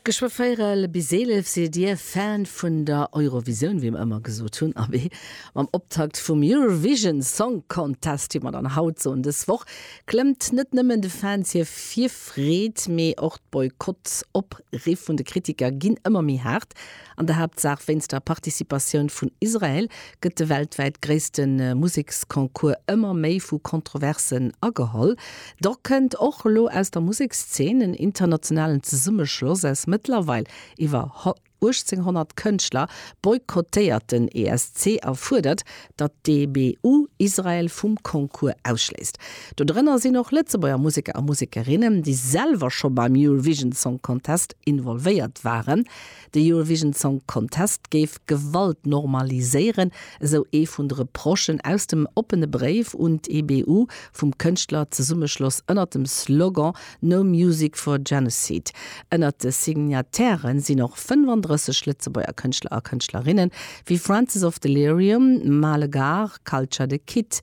Geschwë véirel bis eelef sidd dir Fan vun der Eurovisioun, wéi mer ëmmer gesot hunn. Abee, mam Optakt vum Eurovision Song Contest, wéi mer dann haut soen, dës Woch klëmmt net nëmmen de Fans hir Virfreed, mee och d'Boykott-Opriffe vun de Kritiker ginn ëmmer méi haart. An der Haaptsaach wéinst der Participatioun vun Israel gëtt de weltwäit gréisste Museksconcours ëmmer méi vu Kontroversen ageholl. Dach kënnt och elo aus der Musekszeen en internationalen Zesummeschloss aus mëttlerweil iwwer 1.800 Kënschtler, boykottéiert den ESC a fuerdert, datt d'EBU Israel vum Concours ausschléisst. Do drënner sinn och Lëtzebuerger Museker a Musekerinnen, déi selwer scho beim Eurovision Song Contest involvéiert waren. De Eurovision Song Contest géif Gewalt normaliséieren, esou ee vun de Reprochen aus dem oppene Bréif un d'EBU vum Kënschtlerzesummechloss ënnert dem Slogan No Music for Genocide. Ënnert de Signataire sinn och 35 Lëtzebuerger Kënschtler a Kënschtlerinne wéi Francis of Delirium, Male Gare, Culture The Kid,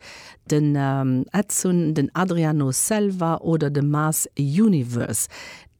den Edsun, den Adriano Selva oder de Mass Universe.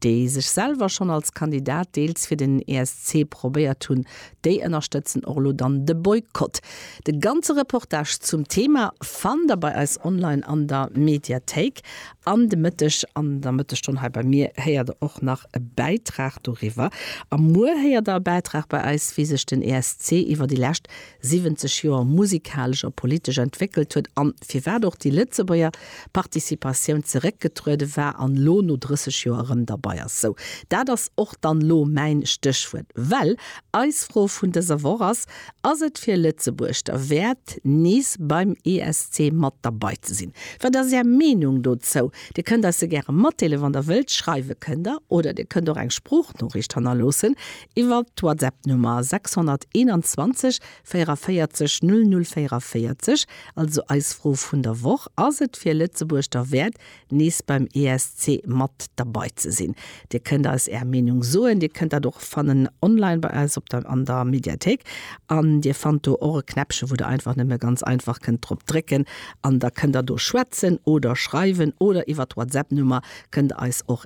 déi sech selwer schonn als Kandidat deels fir den ESC probéiert hunn, déi ënnerstëtzen och elo dann de Boykott. De ganze Reportage zum Thema fannt der bei eis online an der Mediathéik. An de Mëtteg an der Mëttegstonn hei bei mir héiert der och nach e Bäitrag doriwwer. A muer héiert der e Bäitrag bei eis, wéi sech den ESC iwwer déi lescht 70 Joer musikalesch a politesch entwéckelt huet an firwat och déi Lëtzebuerger Participatioun zeréckgetruede war an elo no 30 Joer erëm derbei ass. Sou, dat ass och dann elo mäin Stéchwuert, well eis Fro vun dëser Woch ass, Ass et fir Lëtzebuerg derwäert, nees beim ESC mat derbei ze sinn? Wat ass Är Meenung dozou? Dir kënnt eis se gäre matdeelen, wann Der wëllt. Schreiwe kënnt Der oder Dir kënnt och eng Sproochnoriicht hannerloossen Iwwert d'Whatsapp-Nummer 621 44 00 44, also eis Fro vun der Woch, Ass et fir Lëtzebuerg derwäert, nees beim ESC mat derbei ze sinn? Dir kënnt eis Är Meenung soen. Dir kënnt dat och fannen online bei eis op der an der Mediathéik. An Dir fannt do och e Knäppche, wou Der einfach nëmme ganz einfach kënnt drop drécken. An da kënnt Der do schwätzen oder schreiwen oder iwwert d'Whatsapp-Nummer kënnt Der eis och.